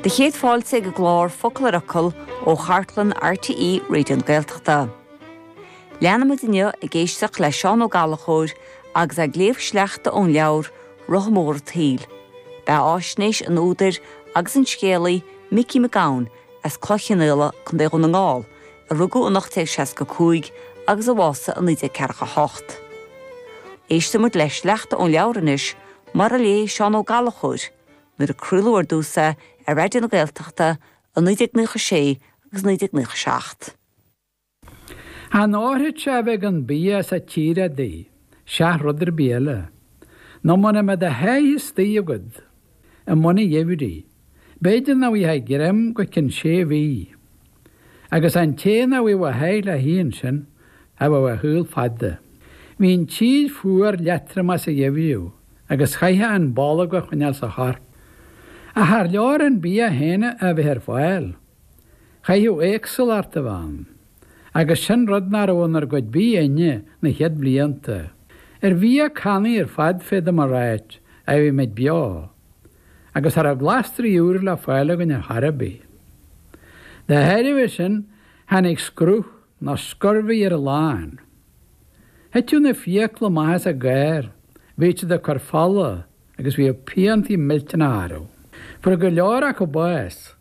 Do chéad fáilte ag an gclár Focal ar Fhocal ó chartlann RTÉ Raidió na Gaeltachta. Leanfaimid inniu ag éisteacht le Seán Ó Gallchóir agus é ag léamh sleachta ón leabhar Rotha Mór an tSaoil, beathaisnéis an údair agus an scéalaí Micí Mac Gabhann as Cloich Chionnaola, Co. Dhún na nGall, a rugadh in 1865 agus a bhásaigh in 1948. Éistfimid le sleachta ón leabhar anois Mar a léigh Seán Ó Gallchóir nuair a craoladh ar dtús é ar Raidió na Gaeltachta i 1996 agus 1997. Chan fhóirfeadh sé a bheith gan bia sa tír adaí, seach rud ar bith eile. Nó muna mbeadh do sháith istigh agat, i mbun an gheimhridh, b'fhéidir nach bhfaighfeá greim go cionn sé mhí. Agus an té nach bhfaigheadh a sháith le hithe ansin cha bheadh a shaol fada. Bhí an tír fuar leatromach sa gheimhreadh agus chaithfeá an bolg a choinneáil sa chorp. Ach char leor an bia féin a bheith ar fáil. Chaithfeadh éagsúlacht a bheith ann. Agus sin rud nach raibh inár gcuid bídh againne na chéad bhlianta. Ar bhia cannaí ar fad féadaim a ráit a bhí muid beo. agus cha raibh glasraí úra le fáil againn ar chor ar bith. Dá thairbhe sin tháinig scruth nó scurvy ar a lán. Thiteadh na fiacla amach as a gcár, bhíodh siad ag cur fola agus bhíodh piantaí millteanacha orthu. Fuair go leor acu bás.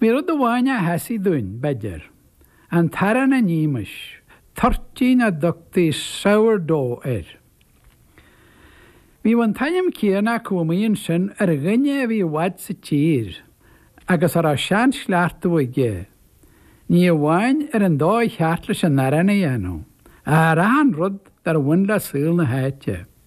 Bhí rud amháin a sheasaigh dúinn, b'fhéidir. An t-arán a nímis, toirtín a dtugtaí sourdough air. Bhíodh an t-ainm céanna acu amuigh ansin ar dhuine a bhí i bhfad sa tír agus a raibh sean-chleachtadh aige, ní amháin ar an dóigh cheart leis an arán a dhéanamh, ach ar achan rud dár bhain le saol na háite.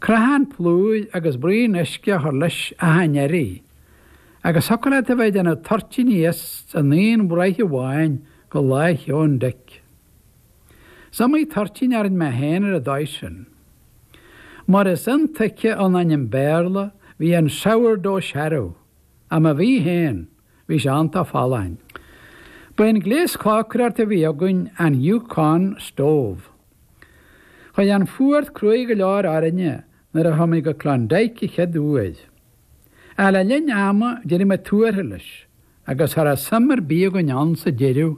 Crothán plúir agus braon uisce a chur leis achan iarraidh. Agus thiocfadh leat a bheith ag déanamh toirtíní as an aon bhraich amháin go Lá Sheoin Dic. Is iomaí toirtín a rinn mé féin ar an dóigh sin. Mar is intuigthe ón ainm Béarla bhí an Sourdough searbh, ach má bhí féin, Bhí sé iontach folláin. Ba é an gléas cócaireachta a bhí againn an Yukon Stove. Chuaigh an fuacht cruaidh go leor orainne nuair a chuaigh muid go Klondike an chéad uair. Ach le linn ama d'éirigh muid tuartha leis agus cha raibh suim ar bith againn ann sa deireadh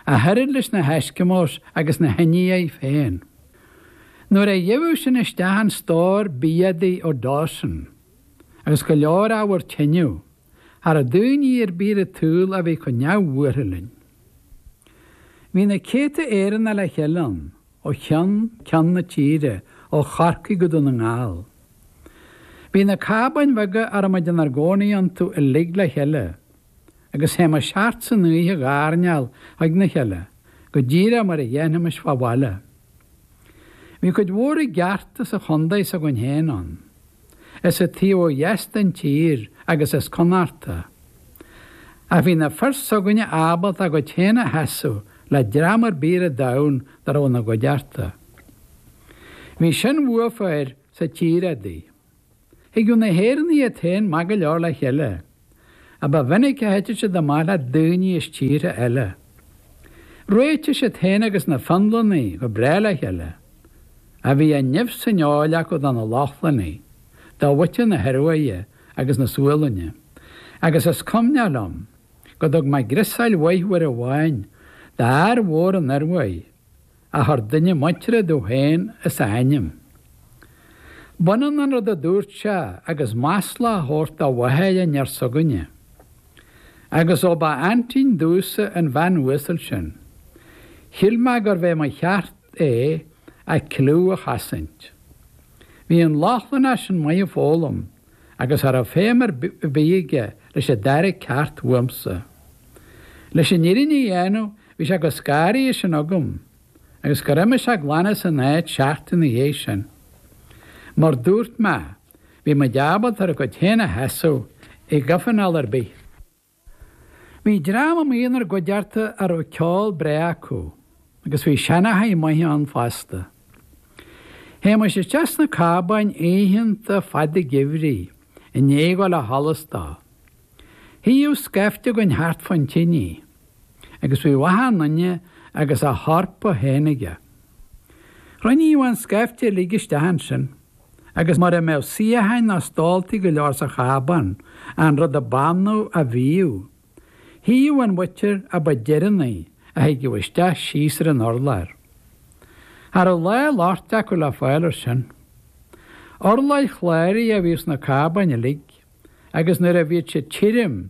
ach oiread leis na hEskimos agus na hIndiaigh féin. Nuair a gheobhadh sinn isteach an stór bia adaí ó Dawson agus go leor ábhar tineadh, cha rabh daoine ar bith ar an tsaol a bhí chomh neamhbhuartha linn. Bhí na céadta Éireannaigh le chéile ann, ó cheann ceann na tíre, ó Chorcaigh go Dún na nGall. Bhí na cábáin bheaga a raibh muid inár gcónaí iontu uilig le chéile, agus théimis thart san oíche ag airneál ag na chéile, go díreach mar a dhéanfaimis fá bhaile. Bhí cuid mhór i gceart as an chondae s'againn féin ann. as an taobh ó dheas den tír agus as Connachta. Ach bhí na fir s'againne ábalta a gcuid féin a sheasamh le dream ar bith ar an domhan dá raibh ina gcuideachta. Bhí sin uafa air sa tír udaí. Thigeadh na hÉireannaigh iad féin maith go leor le chéile. ach ba mhinic a thiteadh siad amach le daoine as tíortha eile. Réitigh siad féin agus na Fionlannaigh go breá le chéile, ach bhí an nimh san fheoil acu do na Lochlannaigh, do mhuintir na hIoruaidhe agus na Sualainne, agus is cuimhneach liom go dtug mé griosáil mhaith uair amháin d'fhear mhór ón Ioruaidh, a chuir duine muinteartha domh féin as a ainm. B'ionann an rud a dúirt sé agus masla a thabhairt do mháthair an fhir s'againne. Agus ó ba aintín domhsa an bhean uasal sin, shíl mé gurbh é mo cheart é a cliú a chosaint. Bhí an Lochlannach sin maith ag foghlaim agus cha raibh feidhm ar bith aige leis an dara ceacht uaimsa. Leis an fhírinne a dhéanamh bhí sé chomh scanraithe sin agam agus gur imigh sé glan as an áit seachtain ina dhiaidh sin. Mar dúirt mé, bhí muid ábalta ar ár gcuid féin a sheasamh i gcomhthionól ar bith. Bhí dream amuigh inár gcuideachta a raibh ceol breá acu agus bhí seanchaithe maithe ann fosta. Théimis isteach sna cábáin oícheanta fada geimhridh i ndiaidh dul ó sholas dó. Shuíodh scaifte againn thart fán tinidh agus bhíodh achan duine agus a shorpa féin aige. Chruinníodh an scaifte uilig isteach ansin. agus mura mbeadh suíocháin ná stóltaí go leor sa chábán, an rud a b'annamh a bhíodh, shuíodh an mhuintir a ba deireannaí a thigeadh isteach síos ar an urlár. Cha rabh lá locht acu le fáil air sin. Urláir chláraigh a bhíodh sna cábáin uilig, agus nuair a bhíodh siad tirim,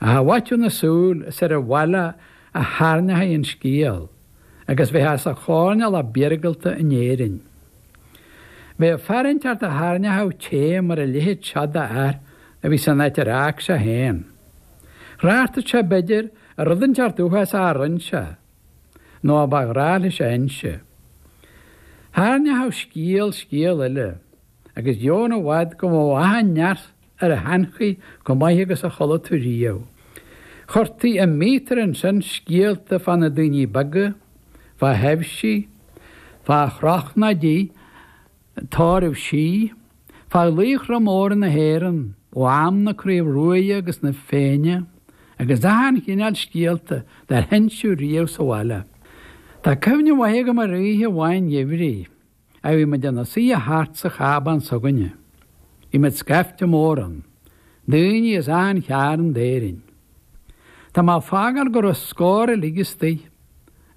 I bhfaiteadh na súl is ar an bhaile a thairneochaí an scéal agus bheith as an choirnéal ab iargúlta in Éirinn. Bheadh a fear inteacht a thairneochadh té mor a leithéid seo d'fhear a bhí san áit ar fhág sé fhéin. Thráchtfad sé b'fhéidir ar rud inteacht uafásach a rinn sé, nó a ba ghnách leis a inse. Thairneochadh scéal scéal eile, agus gan i bhfad go mbeadh an neart ar sheanchaí comh maith agus a chuala tú riamh. Chuirtí i míotar ansin scéalta fá na daoiní beaga, fá thaibhsí, fá chrochnáidí, tairbhsí, fá laochra móra na hÉireann ó am na Craobh Ruaidhe agus na Féinne agus achan chineál scéalta dár hinseadh riamh sa bhaile. Tá cuimhne mhaith agam ar oíche amháin gheimhridh. a bhí muid ina suidhe thart sa chabán s'againne. Bhí muid scaifte mór ann, daoine as achan chearn d'Éirinn. Tá mé ag fágáil go raibh scór uilig istoigh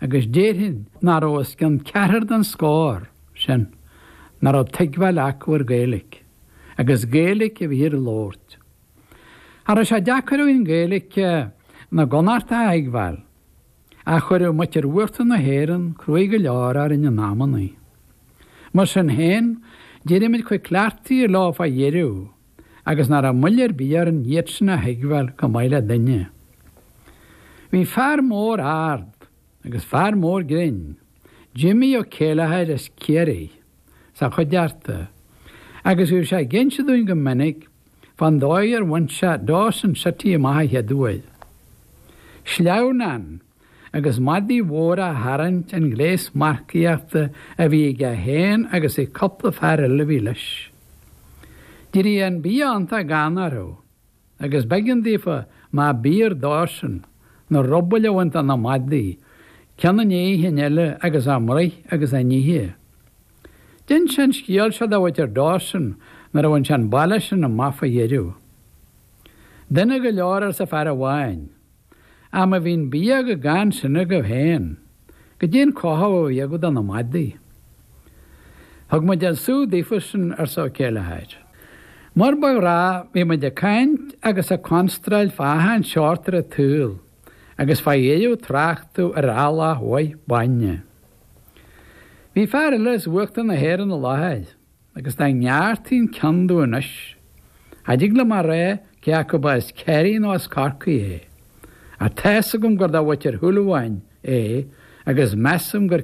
agus déarfainn nach raibh os cionn ceathrar den scór sin nach raibh tuigbheáil acu ar Gaeilic agus Gaeilic a bhíthear a labhairt. Cha raibh sé deacair orainn Gaeilic na gConnachtach a thuigbheáil. Ach chuireadh muintir uachtar na hÉireann cruaidh go leor orainn in amannaí. Mar sin féin, d'éirigh muid chomh cleachtaithe leo fá dheireadh agus nach raibh moill ar bith orainn iad sin a thuigbheáil comh maith le duine. Bhí fear mór ard agus fear mór grinn, Jimmy Ó Céileachair as Ciarraighe, sa chuideachta, agus bhíodh sé ag inse dúinn go minic Fán dóigh ar bhain sé Dawson City amach an chéad uair sleamhnán agus madaí móra á tharraingt an gléas marcaíochta a bhí aige féin agus ag cupla fear eile a bhí leis. D'eirigh an bia iontach gann orthu agus b'eigean daofa má b'fhíor dósan na rubaill a bhaint de na madaí ceann i ndiaidh an chinn eile agus a mbruith agus a n-ithe. D'inis sé an scéal seo do mhuintir Dawson nuair a bhain sé an baile sin amach fá dheireadh. Dona go leor arsa fear amháin. Ach má bhí an bia comh gann sin agaibh féin, goidé an cothú a bhí agaibh do na madaí. Thug muid an sú daofa sin arsa Ó Céileachair. Mar ba ghnách bhí muid ag caint agus ag constráil fá achan seórt ar an tsaol agus fá dheireadh tráchtadh ar eallach mhaith bainne. Bhí fear eile as uachtar na hÉireann i láthair agus dá ngearrtaí an ceann díom anois, cha dtig liom a rá cé acu ba as Kerry nó as Corcaigh é. Ach tá's agam gur de mhuintir Shúilleabháin é agus measaim gur.